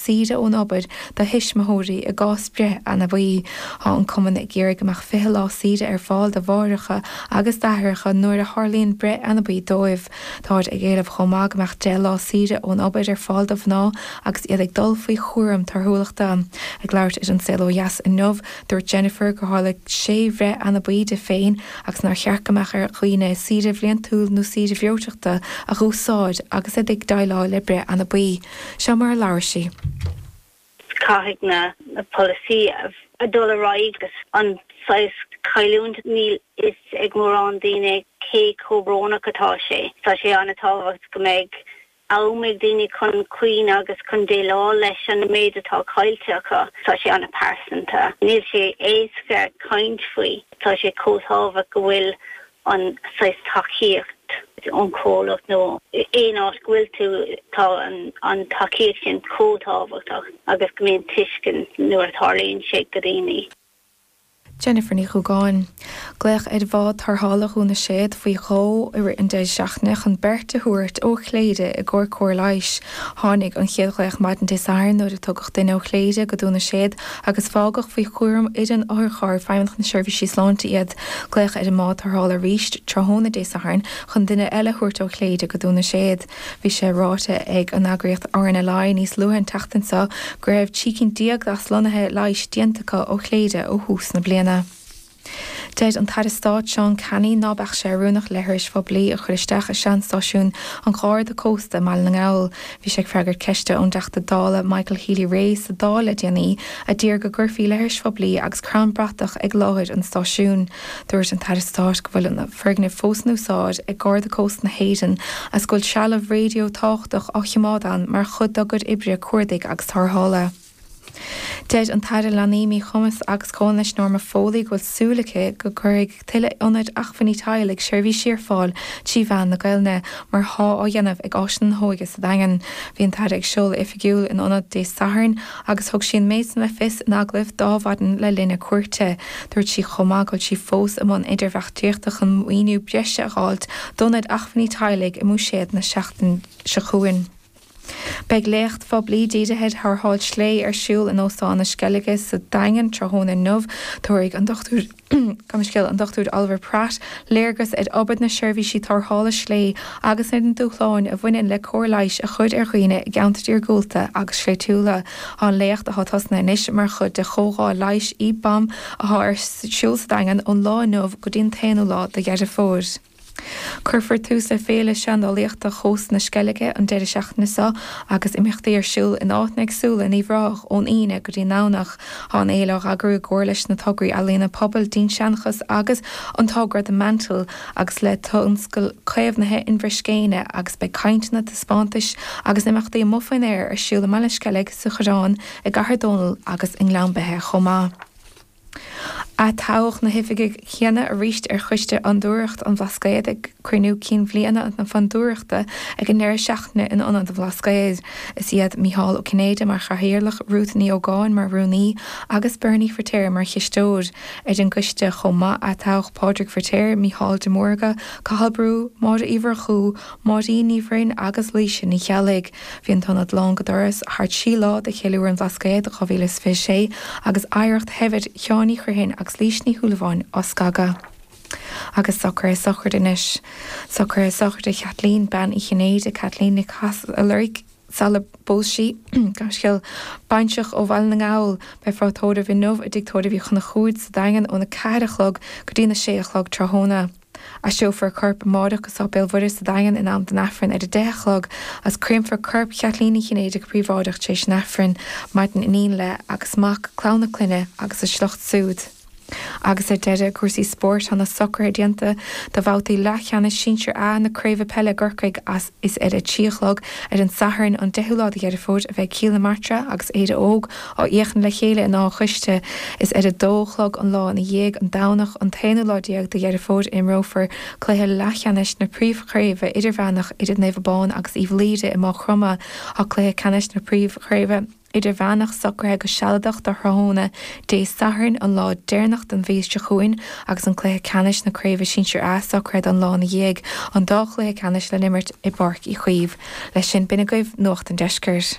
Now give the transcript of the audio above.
saoire ón obair do thuismitheoirí i gcás breith anabaí. Tá an Cumann ag iarraidh go mbeadh 20 lá saoire ar fáil do mháithreacha agus d'aithreacha nuair a tharlaíonn breith anabaí dóibh. Táid ag éileamh chomh maith go mbeadh 10 lá saoire ón obair ar fáil do mhná agus iad ag dul faoi chúram torthúlachta. Ag labhairt ar An Saol Ó Dheas inniu, dúirt Jennifer gur tharla 6 bhreith anabaí di féin agus nár cheart go mbeadh ar dhaoine saoire bhliantúil nó saoire bhreoiteachta a dh'úsáid agus iad ag déileáil le breith anabaí. Seo mar a labhair sí. Caithfidh na polasaí a dul ar aghaidh agus an saghas cailliúint, níl fhios ag mórán daoine cé chomh brónach atá sé. Tá sé an-tábhacht go mbeidh am ag daoine chun caoineadh agus chun déileáil leis an méid atá caillte acu. Tá sé an-pearsanta. Níl sé éasca caint faoi. Tá sé chomh tábhacht go bhfuil an saghas tacaíocht ón comhlacht nó aon áit go bhfuil tú, tá an tacaíocht sin chomh tábhachtach agus go mbíonn tuiscint nuair a tharlaíonn sé go daoine. Jennifer Ní Dhubhgáin. Glaodh ar bhád tarrthála Dhún na Séad faoi dhó i rith an deireadh seachtaine chun beirt a thabhairt ó Chléire i gcomhair cóir leighis. Tháinig an chéad ghlaoch maidin Dé Sathairn nuair a tugadh duine ó Chléire go Dún na Séad agus fágadh faoi chúram fhoireann otharcharr Feidhmeannacht na Seirbhísí Sláinte iad. Glaodh ar an mbád tarrthála arís tráthnóna Dé Sathairn chun duine eile a thabhairt ó Chléire go Dún na Séad. Bhí sé ráite ag an eagraíocht RNLI níos luaithe an tseachtain seo go raibh trí cinn déag d'aslonnuithe leighis déanta acu ó Chléire ó thús na bliana. Deir an tAire Stáit Seán Canney ná beadh sé oiriúnach leithris phoiblí a chur isteach i seanstáisiún an Gharda Cósta i mBaile na nGall, Bhí sé ag freagairt ceiste ón dTeachta Dála Michael Healy-Rae sa Dáil le déanaí a d'iarr go gcuirfí leithris phoiblí agus crann bratach ag láthair an stáisiúin. Dúirt an tAire Stáit go bhfuil an foirgneamh fós in úsáid ag Garda Cósta na hÉireann agus go bhfuil trealamh raidió tábhachtach á chimeád ann mar chuid dá gcuid oibre cuardaigh agus tarrthála. Deir an tAire Leanaí, Míchumais agus Comhionannais Norma Foley go bhfuil súil aici go gcuirfidh tuilleadh ionaid acmhainní teaghlaigh seirbhísí ar fáil trí mheán na Gaelainne, mar athá á dhéanamh ag Áiseanna na hÓige sa Daingean. Bhí an tAire ag seoladh oifigiúil an ionaid Dé Sathairn agus thug sí an méid san le fios in agallamh d'Adhmhaidin le linn a cuairte. Dúirt sí chomh maith go bhfuil sí fós i mbun idirbheartaíochta chun maoiniú breise a fháilt d'ionaid acmhainní teaghlaigh i mBuiséad na seachtaine seo chugainn. Beidh léacht phoiblí dírithe ar tharrtháil sléibhe ar siúl in Óstán na Sceilge sa Daingean tráthnóna inniu. Tabharfaidh an Dr, gabh mo leithscéal, an Dr Oliver Pratt léargas ar obair na seirbhísí tarrthála sléibhe agus ar na dúshláin a bhaineann le cóir leighis a chur ar dhaoine i gceantair iargúlta agus sléibhtiúla. Tá an léacht, atá tosnaithe anois, mar chuid de chomhdháil leighis, EBPOM, atá ar siúl sa Daingean ón lá inniu go dtí an t-aonú lá de Dheireadh Fómhair. Cuirfear tús le Féile Seandálaíochta Chósta na Sceilge an deireadh seachtaine seo agus imeachtaí ar siúl in áiteanna éagsúla in Uíbh Ráthach ón Aoine go dtí an Domhnach. Tá an fhéile á heagrú i gcomhar leis na tograí Ealaíona Pobail, Dinnseanchas agus an togra The Mantle agus le tionscal caomhnaithe Inbhir Scéine agus beidh cainteanna, taispeántais agus imeachtaí amuigh faoin aer ar siúl i mBaile an Sceilg, sa Choireán, i gCathair Dónall agus i nGleann Beithe chomh maith. Atoghadh na hoifigigh chéanna arís ar Choiste Fhondúireacht an Bhlascaoid ag cruinniú cinn bhliana na Fondúireachta ag an ndeireadh seachtaine in Ionad an Bhlascaoid. Is iad Micheál Ó Cinnéide mar Chathaoirleach, Ruth Ní Ógáin mar Rúnaí agus Bernie Firtéar mar Chisteoir ar an gCoiste chomh maith. Atoghadh Pádraig Firtéar, Micheál de Mórdha, Cathal Brugha, Máire Uí Mhurchú, Máirín Ní Bhroin agus Laoise Ní Cheallaigh. Bhí an t-ionad lán go doras thar trí lá do Cheiliúradh an Bhlascaoid 2026 agus oidhreacht shaibhir Sheáin Uí Chriomhthain agus Lís Ní Shúilleabháin á scagadh. Agus socraithe sochraide anois. Socraithe sochraide Chaitlín Bean Uí Chinnéide, Caitlín Nic Chathasaigh, a loirg sular phós sí, gaiscéal baintreach ó Bhaile na nGall. Beifear á tórramh inniu i dTigh Tórraimh Uí Chonchúir sa Daingean óna ceathair a chlog go dtína sé a chlog tráthnóna. Aistreofar a corp amáireach go Sáipéal Mhuire sa Daingean in am don Aifreann ar a deich a chlog agus créamfar corp Chaitlín Uí Chinnéide go príobháideach tar éis an Aifrinn. Maireann iníon léi agus mac, clann a clainne agus a sliocht súd. Agus ar deireadh, i gcúrsaí spóirt tá na socraithe déanta do bhabhtaí leathcheannais sinsir A na craoibhe peile i gCorcaigh agus Is ar a trí a chlog ar an Satharn an 10ú lá de Dheireadh Fómhair a bheidh Cill na Martra agus Éire Óg á fhéachaint le chéile in Áth an Chóiste. Is ar a dó a chlog an lá ina dhiaidh, an Domhnach an t-aonú lá déag de Dheireadh Fómhair a imreofar cluiche leathcheannais na príomhchraoibhe idirmheánach idir Naomh Abán agus Uíbh Laoire i Mágh Chromtha, cluiche ceannais na príomhchraoibhe. Idirmheánach socraithe go sealadach do thráthnóna Dé Sathairn, an lá deireanach den mhí seo chugainn, agus an cluiche ceannais na Craoibhe Sinsir A socraithe don lá ina dhiaidh, an dá chluiche ceannais le n-imirt i bPáirc Uí Chaoimh. Leis sin, b'in agaibh Nuacht an Deiscirt.